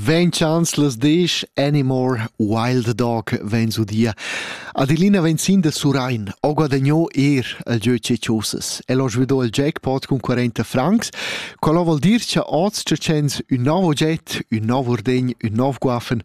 Vegn chanzlas disch Anymore Wild Dog vegn udia. Adelina vegn sin da Surain, o guadagnò er al gieu Ceciosas. El ho svidò il jackpot cun 40 francs, quello vuol dir cha oz tschens ün nov ogget, ün nov urdegn, ün nov guaffen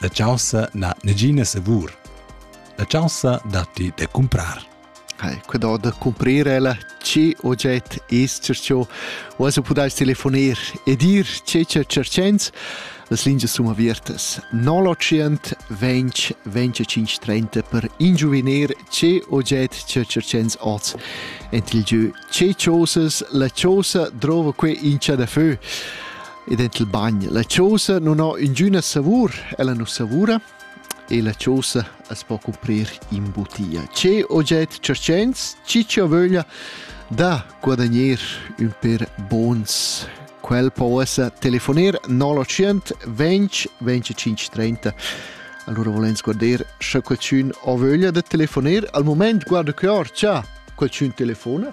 La chaussa n'ha negina savur. La chaussa datti da cumprar. Hai, quedò da cumprir ella, che oget es cercio, o also pudais telefoner e dir che cercents. Las lingias sun avertas 0800 20 25 30 per ingiuviner che oget cercents oz. Ent il gieu che chosas la chosa drova que in da feu. Ed ent il bagn. La chosa nun ho ingüna savur, ella nu savura e la chosa as po cuprir in butia. Che oget cercents, chi chi ho vöglia da guadagner ün per bons. Quel po esser telefoner 0800 20 25 30. Allora volens guarder sche qualcun ho vöglia da telefoner. Al moment guarda che ho, cha qualcun telefona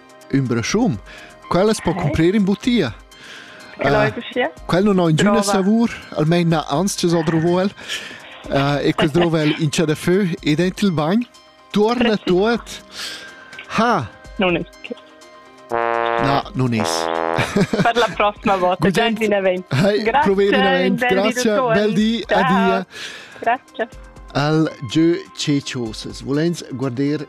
Ün braschun. Quella es po cumprir in butia. Uh, quel non ho ingüna savur, almein na anstges ho drovo el. Uh, e quel drovo el in cha da fö ed en il bagn. Tuorna tuot. Ha! Non es che. No, non es. Per la prossima volta, già in event. Grazie, grazie, bel di, adia. Grazie. Al Jö Cecioses, volens guarder